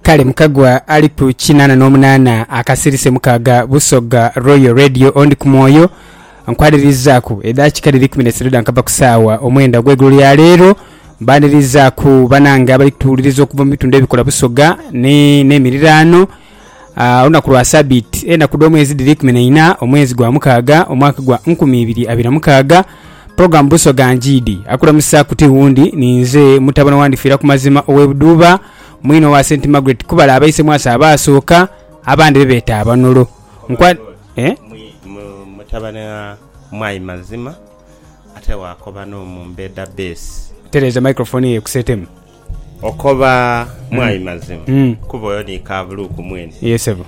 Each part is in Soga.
kale mukagwa ali ku kinana n'omunana akasirise mukaaga busoga royal radio ondi ku mwoyo nkwanirizaaku edakika dhiri kumi n'eisatu dhankava ku saawa omwenda ogw'eigulo lya leero mbanirizaaku banange abali kutuwuliriza okuva mu bitundu ebikola busoga ni n'emiriraano Olunaku lwa Sabiiti. Enaku dh'omwezi dhiri ikumi na ina, omwezi gwa mukaaga, omwaka gwa nkumi ibiri abiri na mukaaga. Program Busoga Njiidi akulamusa ku ti wundi ni nze mutabane owa Ndifiira ku mazima ow'e Buduuba, mwine owa Saint Margaret Kubala abaise mwasa abaasooka, abandi be beeta abanolo. Nkwa, eh? Mutabane wa Mwai Mazima ate waakoba n'omu Mbeda Base. Tereeza microphone eyo ekuseetemu. Okoba mwai mazima kuba oyo ni kabuluuku mwene. Yee sebo.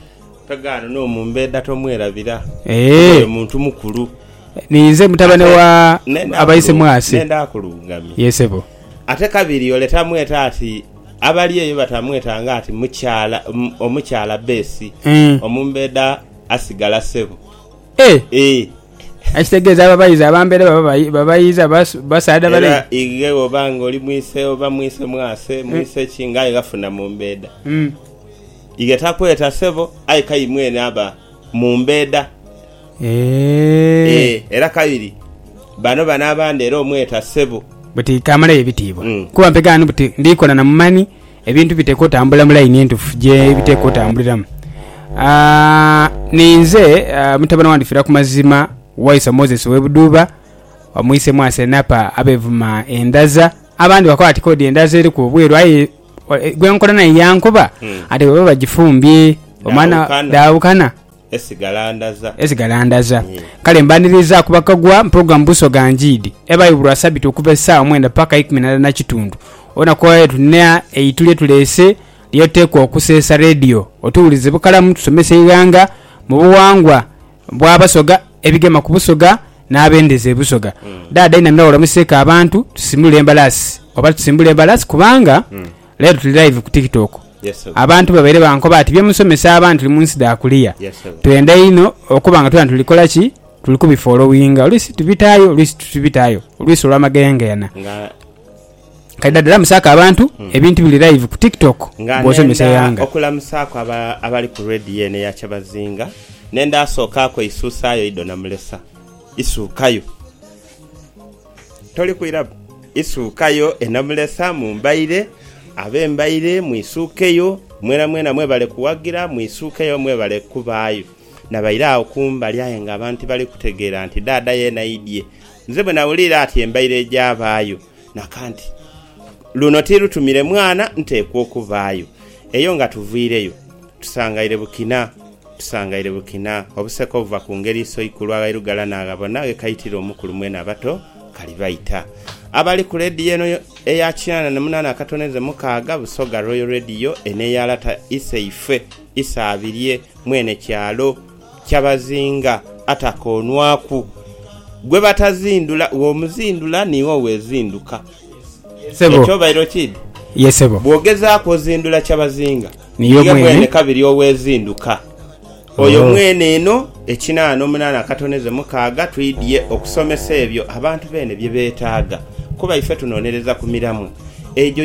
Pegaano n'omumbeeda tomwerabira kuba oyo muntu mukulu. Ninze mutabane wa Abaisemwasi. Nenda akulungamye. Yee sebo. Ate kabiri ole tamweta ati abali eyo batamweta nga ati mukyala omukyala besi omumbeeda asigala sebo. Ee. Ekitegeeza ababaiza abambeere baba babaiza, basaadha bale. Era igheghe bwoba nga oli mwise oba mwise mwase, mwise ki, ng'aye ghafuna mu mbeeda, ighe takweta sebo, aye k'aye mwene aba mu mbeeda. Ee. Era kabiri bano bano abandi era omweta sebo. Buti kamalayo ebitiibwa, kuba mpegaano buti ndikola na mu mani. Ebintu biteekwa otambula mu line entufu je biteekwa otambuliramu. Ninze mutabane wandi fira ku mazima waisa Moses owe Buduuba omwise mwase napa abevuma endaza abandi bakoba bati kodi endaza eriku obweru aye gwenkola naye yankoba ati bwebaba bajifumbye omwana dhaawukana. Esigalandaza. Esigalandaza. Kale mbaniriza ku bakagwa mu pulogulamu Busoga Njiidi ebayo buli Lwasabiti okuva esaawa mwenda paka eikumi na ndala na kitundu. Olunaku olwaleero tulina eitu lye tuleese lye tuteekwa okuseesa leediyo otuwulize bukalamu tusomese eighanga mu buwangwa bwa Basoga, ebigema ku Busoga n'abendeza e Busoga. Daada inamira walamuseeko abantu tusimbule embalaasi oba tusimbule embalaasi kubanga Leero tuli live ku TikTok. Abantu babaire bankoba ati bye musomesa abantu tuli munsi dha kuliya. Twenda inho okuba nga twena tuli kola ki? Tuli ku bifolowinga. Oluisi tubitaayo, oluisi titubitaayo. Oluisi olwa mageyengeyanha. Kaidadala musaako abantu, hmm. ebintu biri live ku TikTok bwosomesa eighanga. Okulamusaaku abali ku radio eno eya Kyabazinga, nenda asookaaku eisuusaayo Ido Namulesa. Isuukayo. Toli kwiraku, isuukayo e Namulesa mu mbaire, ab'embaire mwisuukeyo, mwenamwena mwebale kuwagira mwisuukeyo mwebale kubaayo. Nabaire agho kumbali aye nga abantu tibali kutegeera nti dhaadha yeena aidhie. Nze bwe nawuliire ati embaire egyabaayo, naka nti, Luno ti lutumire mwana, nteekwa okubaayo. Eyo nga tuviireyo, tusangaire Bukina. Tusangaire bukina obuseka obuva ku ngeri Isoikulu aghairughala n'aghabona ghe kaitira omukulu mwene abato kali baita. Abali ku leediyo eno eya kinaana na munaana akatoneze mukaaga, Busoga Royal Radio, eno eya lata iseife Isaabirye mwene kyalo Kyabazinga atakoonwaku. Gwe batazindula, w'omuzindula niiwe owezinduka. Sebo. Ekyobairo kid. Ye sebo. Bwogezaaku ozindula Kyabazinga niye mwene kabiri owezinduka oyo mwene eno ekinaana omunaana akatoneze mukaaga twidhye okusomesa ebyo abantu beene bye betaaga kuba ife tunonereza ku miramwa egyo